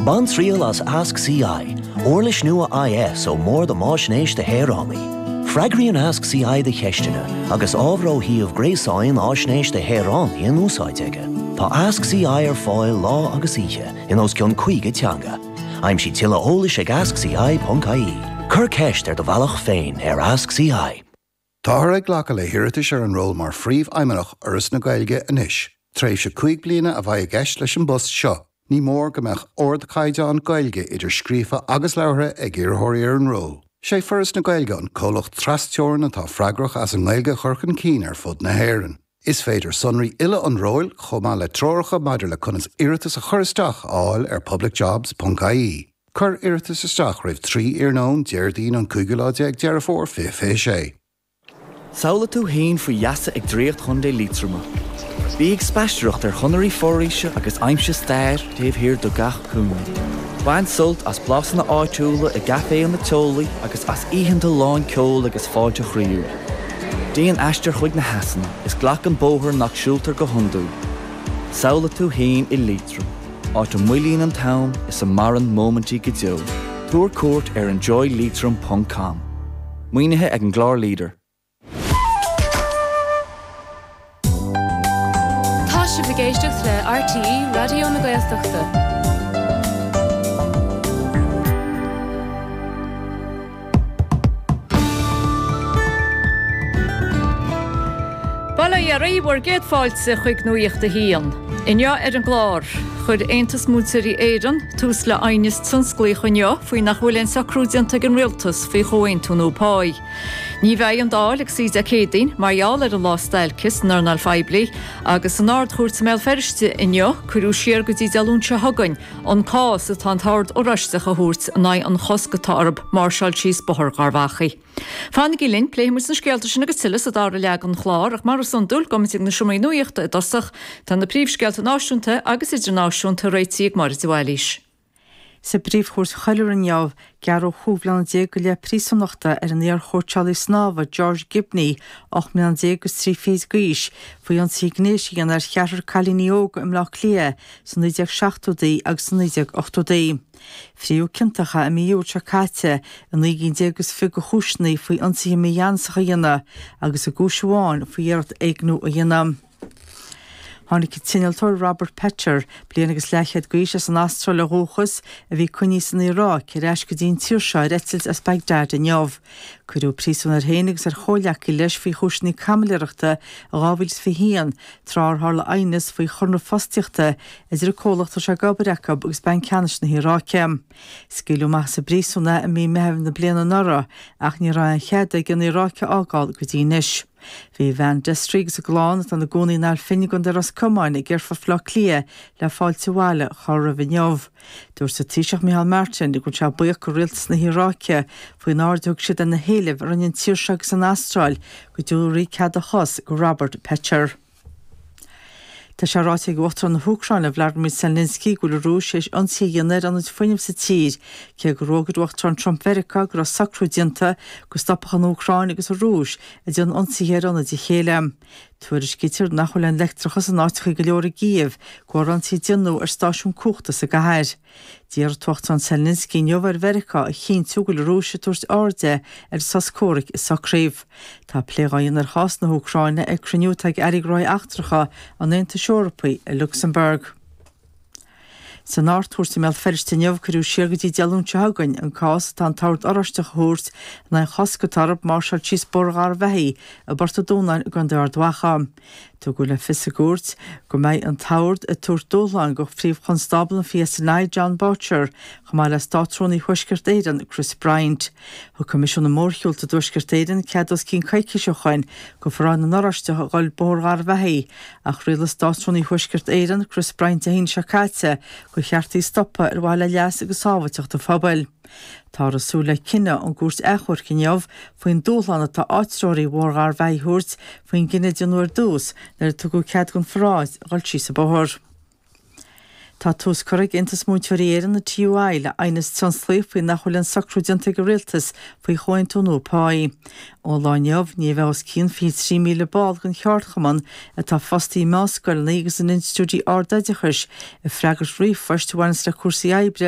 Bain triail as Ask CI, uirlis nua IS ó Bhord um Fhaisnéis do Shaoránaigh. Freagraíonn Ask CI do cheisteanna agus ábhar ó shuíomh gréasáin Fhaisnéis do Shaoránaigh in úsáid aige. Tá Ask CI ar fáil lá agus oíche in os cionn 50 teanga. Aimsigh tuilleadh eolais ag askci.ie. Cuir ceist ar do bhealach féin ar Ask CI. Táthar ag glacadh le hiarratais ar an ról mar Phríomhfheidhmeannach Fhoras na Gaeilge anois. Tréimhse cúig bliana a bheidh i gceist leis an bpost seo. Ní mór go mbeadh ardchaighdeán Gaeilge idir scríofa agus labhartha ag iarrthóirí ar an ról. Is é Foras na Gaeilge an comhlacht trasteorann atá freagrach as an nGaeilge a chur chun cinn ar fud na hÉireann. Is féidir sonraí uile an róil, chomh maith le treoracha maidir le conas iarratas a chur isteach, a fháil ar publicjobs, ponc ie. Cuir iarratas isteach roimh 3 iarnóin Déardaoin an cúigiú lá déag Deireadh Fómhair 2026. Samhlaigh tú fhéin faoi gheasa ag Draíocht Chontae Liatroma. Bí ag spaistearacht ar chonairí foraoise agus aimsigh stair taobh thiar de gach cúinne. Bain sult as blasanna áitiúla i gcaiféanna teolaí agus as oícheanta lán ceoil agus fáilte chroíúil. Déan aistear chuig na heasanna is glac an bóthar nach siúltar go hiondúil. Samhlaigh tú fhéin i Liatroim, áit a moillíonn an t-am is a maireann móimintí go deo. Tabhair cuairt ar enjoyleitrim ponc com. Maoinithe ag an gclár leader. Tá sibh ag éisteacht le RTÉ Raidió na Gaeltachta. Bail ó Dhia oraibh 'gus céad fáilte chuig Nuacht a hAon. Inniu ar an gclár, chuir Aontas Múinteoirí Éireann tús le aighneas tionsclaíoch inniu faoi nach bhfuil aon socrú déanta ag an Rialtas faoi chomhaontú nua pá. Ní bheidh an Dáil ag suí Dé Céadaoin mar gheall ar an lá stailce san earnáil phoiblí agus san Ard-Chúirt i mBéal Feirste inniu cuireadh siar go dtí Dé Luain seo chugainn an cás atá an tOrd Oráisteach a thabhairt in aghaidh an chosc atá orthu máirseáil síos Bóthar Gharbh Achaidh. Fanaigí linn, pléifimid na scéalta sin agus tuilleadh sa dara leath den chlár ach mar is iondúil gabhaimid ag na seomraí nuachta i dtosach, tá na príomhscéalta náisiúnta agus idirnáisiúnta réitigh ag Máire de Bhailís. Sa bPríomhchúirt Choiriúil inniu, gearradh cúig bliana go leith príosúnachta ar an iarchóitseálaí snámha George Gibney, ocht mbliana déag agus trí fichid d'aois, faoi ionsaithe gnéis a dhéanamh ar cheathrar cailíní óga i mBleá Cliath sna 1970idí agus sna 1980idí. Frítheadh ciontach é i mí Iúil seo caite i naoi gcinn déag agus fiche de chúiseanna faoi ionsaithe mígheanasacha a dhéanamh agus i gcúis amháin faoi iarracht éigniú a dhéanamh. Tháinig an t-innealtóir Robert Pether, bliain agus leathchéad d'aois, as an Astráil ó dhúchas, a bhí á choinneáil san Iaráic, ar ais go dtí an tír seo ar eitilt as Baghdad inniu. Cuireadh príosún air féin agus ar chomhghleacaí leis faoi chúiseanna caimiléireachta in 2021, tráth ar tharla aighneas faoi chonradh fostaíochta idir an comhlacht a raibh sé ag obair acu agus Banc Ceannais na hIaráice. Scaoileadh amach as an bpríosún é i mí Meitheamh na bliana anuraidh ach ní raibh aon chead aige an Iaráic a fhágáil go dtí anois. Bhí a bhean Desree agus a chlann atá ina gcónaí in Ail Finn i gContae Ros Comáin ag Aerfort Bhaile Átha Cliath le fáilte abhaile a chur roimh inniu. Dúirt an Taoiseach Micheál Martin go bhfuil sé buíoch de Rialtas na hIaráice faoin aird a thug siad ar na héilimh a rinne an tír seo agus an Astráil go dtabharfaí cead a chos do Robert Pether. Tá sé ráite ag Uachtarán na hÚcráine, Vladimir Zelensky, go bhfuil an Rúis tar éis ionsaí a dhéanamh ar ionaid fuinnimh sa tír, cé go raibh ráite ag Uachtarán Trump Mheiriceá go raibh socrú déanta go stopfadh an Úcráin agus an Rúis ag déanamh ionsaithe ar ionaid a chéile. Tuairiscítear nach bhfuil an leictreachas in áiteachaí go leor i gCív, de bharr ionsaí a déanadh ar stáisiún cumhachta sa gcathair. D'iarr an tUachtarán Zelensky inniu ar Mheiriceá a chinntiú go bhfuil an Rúis ag tabhairt aird ar an sos comhraic a socraíodh. Tá plé dhá dhéanamh ar chás na hÚcráine ag cruinniú atá ag Airí Gnóthaí Eachtracha an Aontais Eorpaigh i Lucsamburg. San Ardchúirt i mBéal Feirste inniu cuireadh siar go dtí Dé Luain seo chugainn an cás atá an tOrd Oráisteach a thabhairt in aghaidh chosc atá orthu máirseáil síos Bóthar Gharbh Achaidh i bPort an Dúnáin i gContae Ard Mhacha. Tugadh le fios i gcúirt go mbeidh an t-ord ag tabhairt dúshlán do Phríomh-Chonstábla an PSNI, Jon Boutcher, chomh maith le Státrúnaí Thuaisceart Éireann, Chris Bryant. Thug Coimisiún na Mórshiúlta i dTuaisceart Éireann cead os cionn coicíse ó shoin do pharáid na nOráisteach a dhul Bóthar Gharbh Achaidh, ach rialaigh Státrúnaí Thuaisceart Éireann, Chris Bryant Dé hAoine seo caite gur cheart í a stopadh ar mhaithe le leas agus sábhailteacht an phobail. Táthar ag súil le cinneadh ón gCúirt Achomhairc inniu faoin dúshlán atá áitritheoirí Bhóthar Gharbh Achaidh a thabhairt faoin gcinneadh a déanadh ar dtús nuair a tugadh cead don pharáid a dhul síos an bóthar. Tá tús curtha ag Aontas Múinteoirí Éireann, an TUI, le aighneas tionsclaíoch faoi nach bhfuil aon socrú déanta ag an Rialtas faoi chomhaontú nua pá. Ón lá inniu, ní bheidh os cionn 23,000 ball den cheardchumann, atá fostaí i meánscoileanna agus in institiúidí ardoideachais, ag freagairt ríomhphoist a bhaint le cúrsaí oibre,